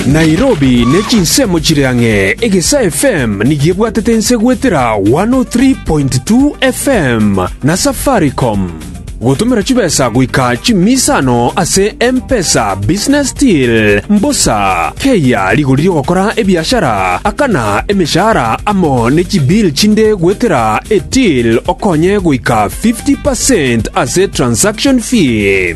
Nairobi ne chinsemo chire ang'e, Egesaa FM nigo ebwatete ense goetera 103.2 FM na Safaricom. Gotomera chibesa goika chimisa ano ase M-Pesa Business Deal, mbosa, keyia rigori rigokora ebiashara, akana emeshahara amo ne chibill chinde goetera eTill okonye goika 50% ase transaction fee.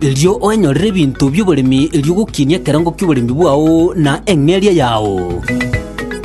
erio oenyorere ebinto bi'oboremi erio ogokinie ekerango ki'oboremi bwao na eng'eria yao.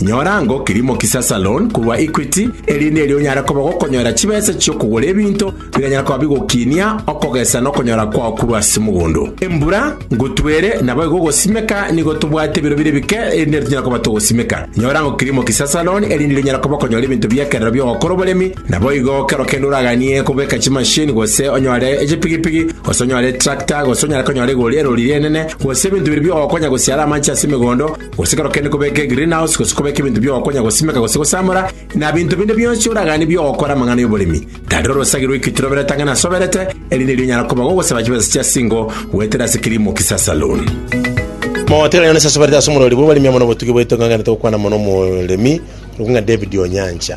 Nyora ango kirimo kisasa loan korwa Equity, erinde erio onyare koba gokonyora chibesa chi'okogora ebinto bikanyara koba bigokinia okogesa na okonyora kwao korwa ase mogondo. Embura ngotwere naboigo ogosimeka nigo tobwate ebiro bire bike erinde erio tonyare koba togosimeka. Nyora ango kirimo kisasa loan erinde erio onyare koba okonyora ebinto bi'ekerero bi'ogokora oboremi Naboigo kero kende oraganie kobeka chimasini, gose onyore echipigipigi, gose onyore etrakta, gose onyare konyora egori erori ri'enene, gose ebinto biria biogokonya gosiara amanche ase emegondo, gose kero kende kobeka egreenhouse, gose kobeka ebinto biogokonya gosimeka gose gosamora, na binto binde bionsi oraganie biogokora amang'ana y'oboremi, tari orosagi rw'ekituro oberete ang'e nasoberete, eri nerio onyara koba gogosaba chibesa chia singo goetera ase kilimo kisa saloon. Mogotegerera Yona sasoberete ase omorori bw'oboremi amo nobotugi bwaito ng'a nganete gokwana mono omoremi, korokwo ng'a David Onyancha.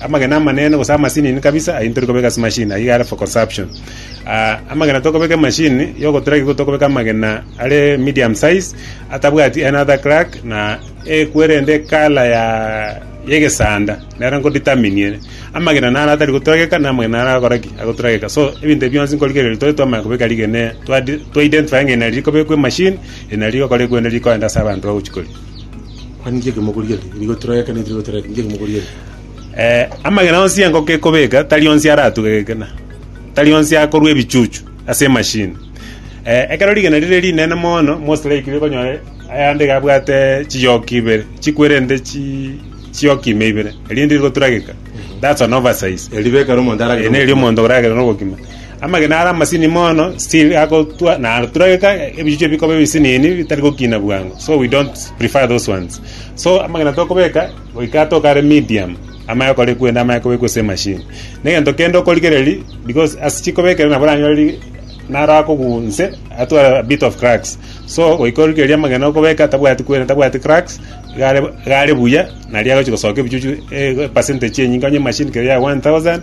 Amagena amanene gose amasinini kabisa ayio nitori kobeka ase machine ayio are for consumption. Amagena tokobeka emachine ya ogotrack nigo tokobeka amagena are medium size atabwati another crack na ekwe rende ekala ya egesanda nero nko determine ere. Amagena naro atari gotrageka na amagena naro agokora ki? Agotrageka. So ebinto ebio bionsi nkorigereria tore twamanya kobeka rigena twa identify ng'a eri nari rikobekwa emachine eri nari rigokora ekwende rikoenda ase abanto bagochi koria. Kwani inki ekemoguri ere? Nigo torore ekero nigo torore inki ekemoguri ere. Eh, amagena onsi engoko ekobeka tari onsi aratuge gekina tari onsi akorwa ebichuchu ase emashini eh, ekero rigena rire rinene mono mostly ekire okonyore ayande iga abwate chiyoki ibere chikwerente chi chiyoki ime ibere erinde rigotura geka that's an oversize Eribekero omonto aragere. ene eri omonto oragera nogokima Amagena are amasini mono still agotwa na aturageka ebichuchu bikoba ebisinini bitari gokina bwango so we don't prefer those ones so amagena tokobeka goika atoka are medium amaye okore kwende amaye kobekwa ase emashini na egento kende okorigereri because ase chikobekera nabo oranyore naro akogunse atware a bit of cracks so goika origereria amagena okobeka tabwati kweri tabwati cracks iga are iga are buya naria agochi gosoka ebichuchu eh percentage enyinge onye emashini kere ya one thousand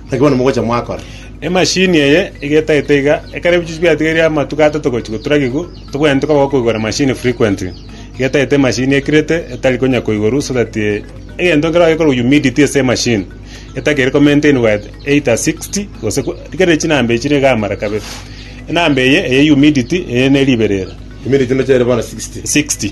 Naki bono mogocha mwakora. Emashini eye egetagete iga, ekero ebichuchu biatigeire amatuko atato gochia goturagigwa, tobwenerete koba gokoigora emashini frequently. Egetagete emashini ekirete etari konya koigorwa so that egento nkere ogekorwa humidity ase emashini etakeire ko maintainwa at 80, 60 gose ko rikarire chinamba echire iga amara kabere. Enamba eye eye humidity eye ne riberera. Humidity ndoche ere bono 60. 60.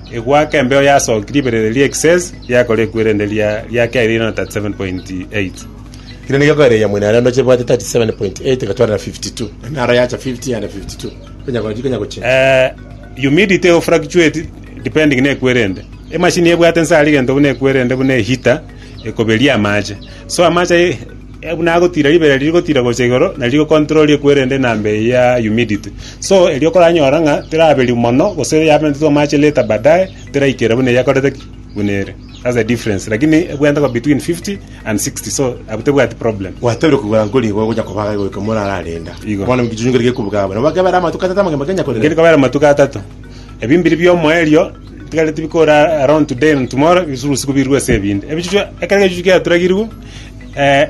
Egoaka embeo yasookire ibere riria ekisese riakora ekuwa erinde eria ria kere riaira na 37.8. Kera nigo ekoereria mwene are onde chebwate 37.8 gotwarana 52. Enara yacha 50 yaenda 52. Konya gochi konya gochia. Eh, humidity or fluctuate depending na ekuwa erinde. Emashini ebwate nsa aria egento buna ekuwa erinde buna eheater ekoberia amache. So amache aye Buna agotiira ribera riria rigotiira gocha igoro, na rigocontrola riekwere rende enamba eye ya humidity. So erio okoranyora ng'a teraberio mono gose yabentetwe amache later baadaye teraikera buna eyakorete ki? Buna ere. That's the difference. Lakini ebwenerete koba between 50 and 60 so abwo tebwati problem. Gwatebirie kogora nkori igo gocha kobaga goika morararenda. Igo. Bono ekichunyu nkeri gekobugabu. Nabo bakebera amatuko atata amagima kenya korera. Nkeri kobera amatuko atato. Ebi mbiri biomoerio tikare tibikora around today and tomorrow bisurusi kobirwe ase ebinde. Ebichuchu ekero egechuchu giaturagirwe Ee,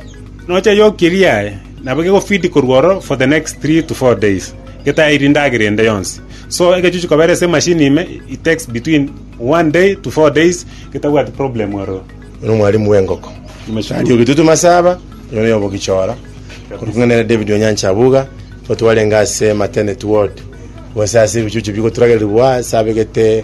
nocha yokirie aye, nabo gegofidi korwa oro for the next three to four days getairi ndagera ende yonsi. So egechuchu kobera ase emashini ime it takes between one day to four days getabwati problem ororo. Oyo nomwalimu bw'engoko. Tari ogetutu masaba, oyo noyo obogichora. Korwa king'ana ere David Onyancha Abuga, nigo twarenge ase maternity ward, gose ase ebichuchu bigoturagererigwa ase abegete